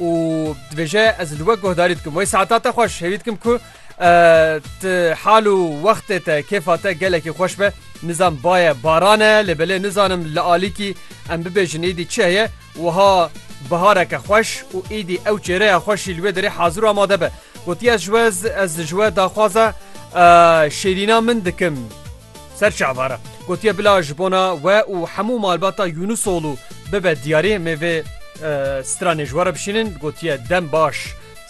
û dibêje ez li we guhdarî dikim wê saeta te xweş hêvî dikim ku ti hal û wextê te kêfa te gelekî xweş be nizam baye baran e lê belê nizanim li alîkî em bibêjin êdî çi heye wiha bihareke xweş û êdî ew çêreya xweşî li wê derê hazir û amade be gotiye ji we ez ji we daxwaza şêrîna min dikim. Ser çava re gotiye bila ji bona we û hemû malbata Yûnûsolû bibe diyarê me vê stranê ji we re bişînin gotiye dem baş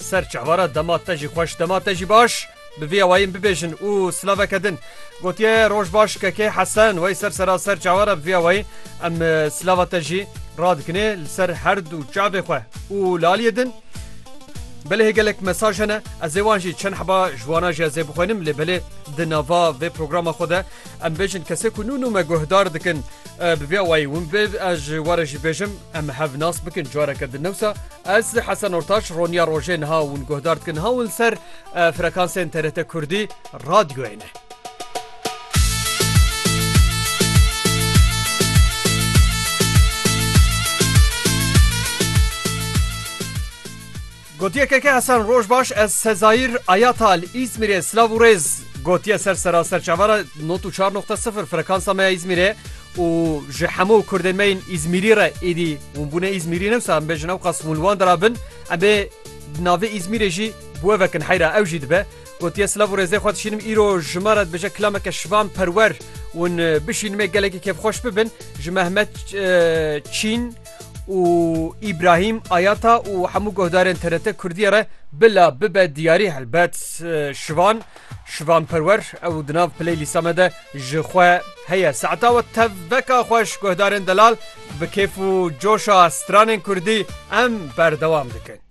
ser çava re dema te jî xweş dema te jî baş bi vê awayîn bibêjin û silaveke din gotiye roj baş kekê hesen wey ser sera ser çava re bi vê awayîn em silava te jî radikinê li ser her du çavê xwe û laliyê din. Belê gelek mesaj hene ez ê wan jî çend heba ji wana jî ez ê bixwînim lê belê di nava vê programa xwe de em bêjin kesê ku nû nû me guhdar dikin bi vê awayî hûn bê ez ji we re jî bêjim em hev nas bikin careke din newsa ez Hesen Ortaç roniya rojê niha hûn guhdar dikin niha hûn li ser frekansên TRT Kurdî radyoyê ne. Gotiye Keke Hesen roj baş ez Sezayir Ayata li Îzmîrê silav û rêz gotiye ser sera serçava re not û çar noqte sifir frekansa me ya Îzmîrê û ji hemû kurdên me yên Îzmîrî re êdî hûn bûne Îzmîrî newsa em bêjin ew qas hûn li wan de rabin em bê di navê Îzmîrê jî bû ev vekin heyra ew jî dibe Gotiye silav û rêzê xwe dişînim îro ji me re dibêje kilameke şivan perwer ûn bişînim ê gelekî kêfxweş bibin ji Mehmet Çîn û Îbrahîm Ayata û hemû guhdarên TRT Kurdiyê re bila bibe diyarî helbet şivan şivan perwer ew di nav piley lîsa me de ji xwe heye saeta we tev veka xweş guhdarên delal bi kêf û coşa stranên Kurdî em berdewam dikin.